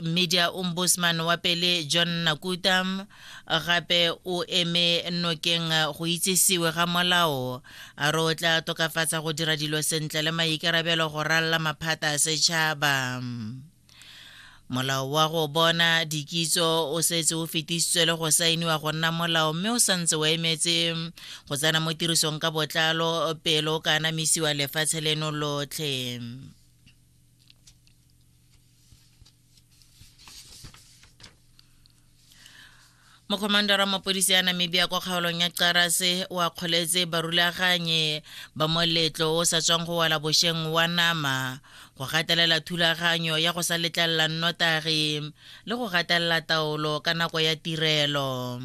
media ombudsman wa pele john nakuta gape o eme nokeng go itsesiwe ga molao a re o tla tokafatsa go dira dilo sentle le maikarabelo go ralla maphata a setšhaba molao wa go bona dikitso o setse o fetisitswe le go saeniwa go nna molao mme o santse o emetse go tsena mo tirisong ka botlalo pele o ka anamisiwa lefatshe leno lotlhe mokhomandara wa mapodisi ya namibia kwa kgaolong ya qarase wa kgoletse barulaganye ba moletlo o sa tswang go wala bosheng wa nama go gatelela thulaganyo ya go sa letlelela nnotagi le go gatelela taolo ka nako ya tirelo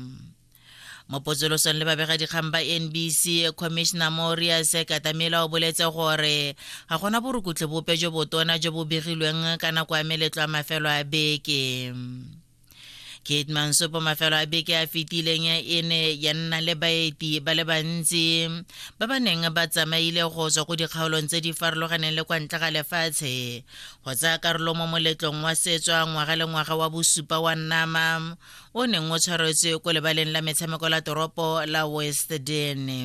mo potsolosong le babegadikgang ba nbc commissioner morias katamela o boletse gore ga gona borukutlhi bope jo botona jo bo begilweng ka nako ya meletlo a mafelo a beke kate mansopo mafelo a beke a fetileng e ne ya nna le baeti ba le bantsi ba ba neng ba tsamaile go tswa ko dikgaolong tse di farologaneng le kwa ntle ga lefatshe go tsaya karolo mo moletlong wa setswa ngwaga le ngwaga wa bosupa wa nama o neng o tshwaretswe ko lebaleng la metshameko la toropo la west dene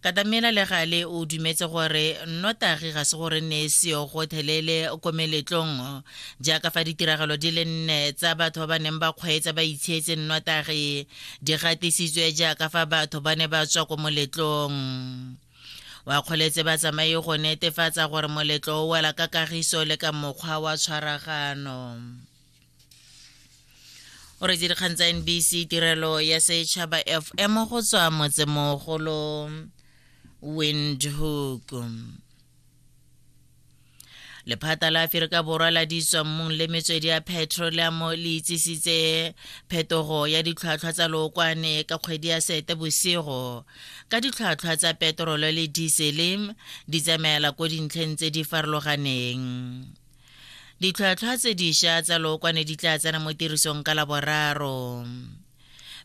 katamela le gale o dumetse gore nnotagi ga se gore ne e seyo gothelele ko meletlong jaaka fa ditiragalo di le nne tsa batho ba ba neng ba kgweetsa ba itshietse nnotagi di gatisitswe jaaka fa batho ba ne ba tswa ko moletlong wa kgoletse ba tsamaye go netefatsa gore moletlo o wela ka kagiso le ka mokgwa wa tshwaragano o re dikgang tsa nbc tirelo ya setšhaba fm go tswa motsemogolo windhoek lephata la aferika borwa la ditswammung le metswedi ya petroleamo le itsisitse phetogo ya ditlhwatlhwa tsa lookwane ka kgwedi ya sete bosigo ka ditlhwatlhwa tsa petrolo le diesele di tsamaela ko dintlheng tse di farologaneng ditlhwatlhwa tse diša tsa lookwane di tla tsena mo tirisong ka laboraro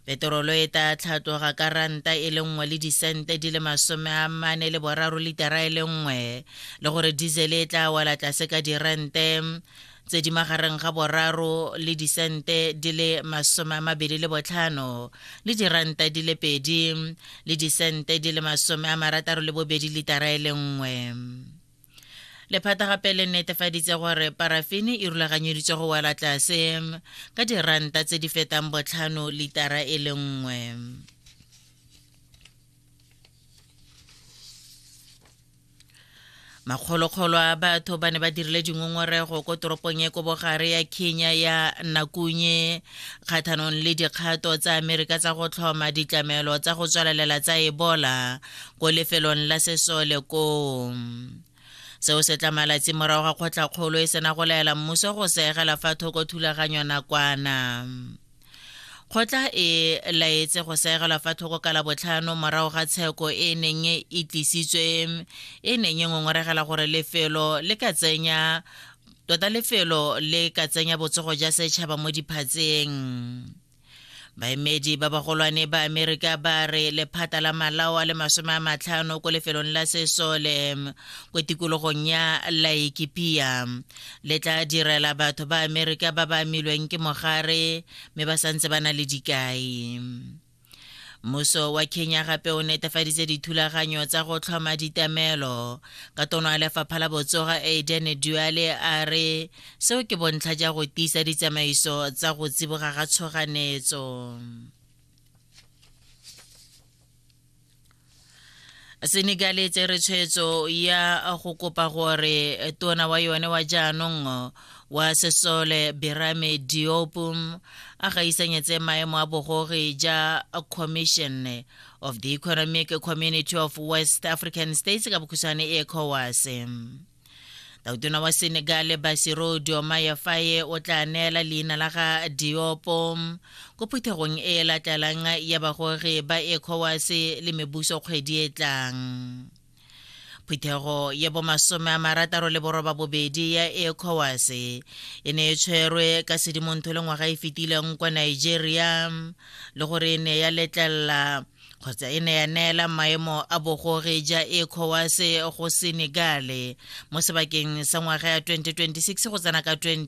peterolo e tla tlhatloga ka ranta e le nngwe le disente di le masome a mane le boraro litara e le nngwe le gore diesel e tla wela tlase ka dirente tse di magareng ga boraro le disente di le masome a mabedi le botlhano le diranta di le pedi le disente di le masome a marataro le bobedi litara e le nngwe lephata gape le netefaditse gore parafene e rulaganyeditswe go wela tlase ka diranta tse di fetang botlhano litara e le nngwe makgolokgolo a batho ba ne ba dirile dingongorego ko toropong e ko bogare ya kenya ya nakunye kgathanong le dikgato tsa amerika tsa go tlhoma ditlamelo tsa go tswalelela tsa ebola ko lefelong la sesole koo seo se tla malatsi morago ga kgotlakgolo e sena go laela mmuso go seegela fa thoko thulaganyo nakwana kgotla e laetse go seegela fa thoko ka labotlhano morago ga tsheko e neng e tlisitswe e neng e ngongoregela gore lefelo le ka tsenya tota lefelo le ka tsenya botsogo ja setšhaba mo diphatseng baemedi ba bagolwane ba amerika ba re lephata la malao a le masome a matlhano ko lefelong la sesole ko tikologong ya laikipia le tla direla batho ba amerika ba ba amilweng ke mogare mme ba santse ba na le dikai mmuso wa kenya gape o netefaditse dithulaganyo tsa go tlhoma ditamelo ka tono ya lefapha la botsoga aden duale a re Seo ke bontlha ja go tiisa ditsamaiso tsa go tsiboga ga tshoganetso. Senegal e tsere tshwetso ya go kopa gore tona wa yone wa jaanong wa sesole Berame Diop a gaisanyetse maemo a bogogi ja Commission of the Economic Community of West African States ka bokhutshwane ECOWAS. tautona wa senegale basiro diomaya faye o tla neela leina la ga diopo ko phuthegong e e latlalang ya bagogi ba ecowas le mebuso kgwedi e tlang phuthego ya bomasome a marataro le boroba bobedi ya ecowas e ne e tshwerwe ka sedimontho le ngwaga e fetileng kwa nigeria le gore e ne ya letlelela kgotsa e ne ya neela maemo a bogore ja ECOWAS go Senegale mo sebakeng sa ngwaga ya 2026 go tsena ka 20